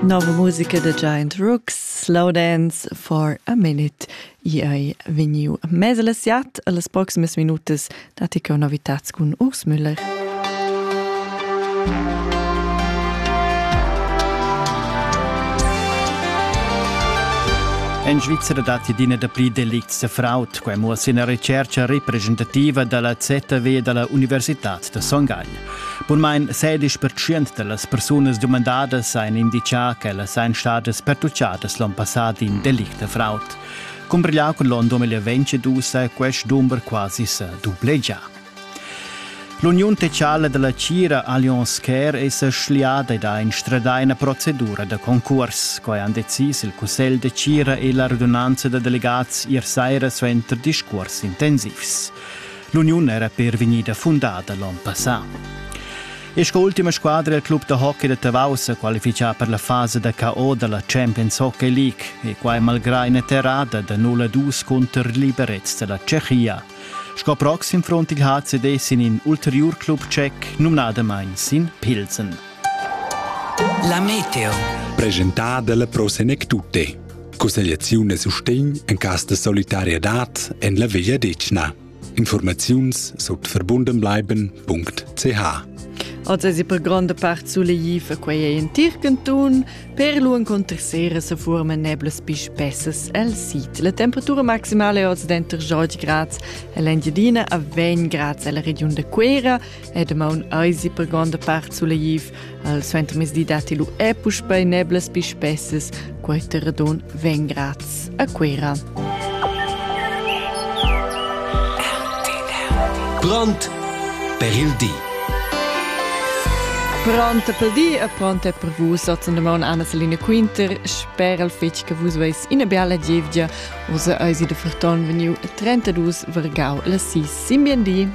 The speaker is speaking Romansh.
Nova musica da Giant Rooks, Slowdance for a Minute. I ei vegniu mez las siat las proximas minutas datti che novitats cun Urs Müller. En Svizzera datti d'ina dapli delicts da fraud, quai muoss ina recerca representativa dalla ZW dalla Universitad da Son Gagl. Bunmain 16% da las persunas dumandadas ein indicà ch'ellas ein stadas pertuccadas l'onn passat in delict da fraud. Cumbriglià cun l'onn 2022 è quest dumber quasi sa dublegià. L'Uniun Tecciala della Cira Allianz Care è sa schliada da instradar una procedura da concurs. Quai han decis il Cussegl de Cira e la radunanza da delegats ier saira suenter discurs intensivs. L'uniun era per vegnida fundada l'on passà. E sco ultima squadra il club da hockey da Tavau sa qualifichà per la fasa da KO da la Champions Hockey League e quai malgrà ina terrada da 0-2 cunter liberets da la Tschechia. Sco proxim front il HCD sin in ulteriur club tschec, numnadamain sin Pilsen. La meteo. Presentada dalla Pro Senec Tutte. Cussegliaziun e sustegn en cas de solidarietad en la Via Decna. Informaziuns sut verbundenbleiben.ch Oz es per gronda part suleiv a quei ei in Tircantun, per lu encontrer sera se forma neblas pi spessas al sit. La temperatura maximale oz denter 20 grads e l'Engiadina a 20 grads alla regiun de Quera e damaun eisi per gronda part suleiv. Al suentermezdi datti lu e puspei neblas pi spessas, quei terradon vegn graz a Cuera. Brand per il di. Pronta per di e pronta per vus otzen de maun Anna Selina Quinter sper al fetg che vus veis ina biala gievgia usa eisi de Ferton veniu 32 vergau la 6 simbien di.